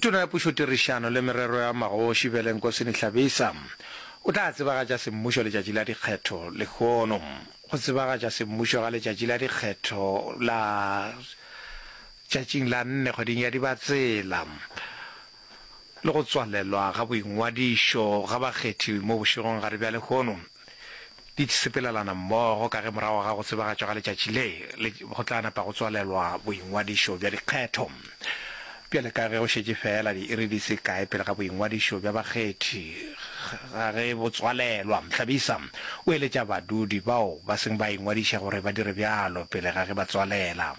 tona ya pušotirišano le merero ya magoši belenko senihlabisa o tla tsebagatša semmušo letšatši la dikgetho lehono go tsebagatša semmušo ga letšatši la dikgetho la tšatšing la nne kgweding ya dibatsela le go tswalelwa ga boingwadišo ga bakgethi mo bošegong gare bja lehono Di sepelalana mmogo ka ge morago ga go tsebagatšwa ga letšatši le, le go tla napa go tswalelwa boingwadišo bja dikgetho. Bjale ka ge go šetše feela diiri di se kae pele ga boingwadišo bja bakgethi ga ge bo tswalelwa, Mhlabisa o eletša badudi bao ba seng ba ingwadiša gore ba dire bjalo pele ga ge ba tswalela.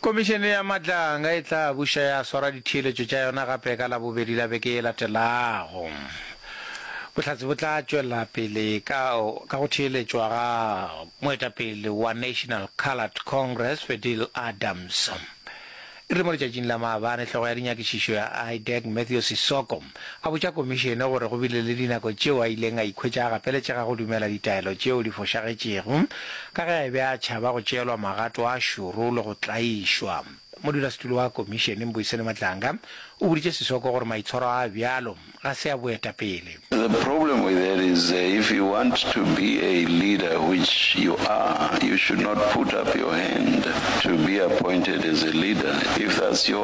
Komišene ya Matlanga e tla buša ya swara ditheeletšo tša yona gape ka Labobedi la beke e latelago. Bohlatse bo tla tšwela pele ka ka go theeletšwa ga moetapele wa National Coloured Congress Fedil Adams. E re mo letšatšing la maabane hlogo ya dinyakišišo ya IDEC Matthew Sisoko, A botša Komišene gore go bile le dinako tšeo a ileng a ikhwetša a gapeletšega go dumela ditaelo tšeo di fošagetšego ka ge a be a tšhaba go tšeelwa magato a šoro le go tlaišwa. Modulasetulo wa Komišene, Mbuyiseni Madlanga, o boditše Sisoko gore maitshwaro a bjalo ga se a boetapele. The problem with that is if you want to be a leader, which you are, you should not put up your hand to be appointed as a leader. If that's your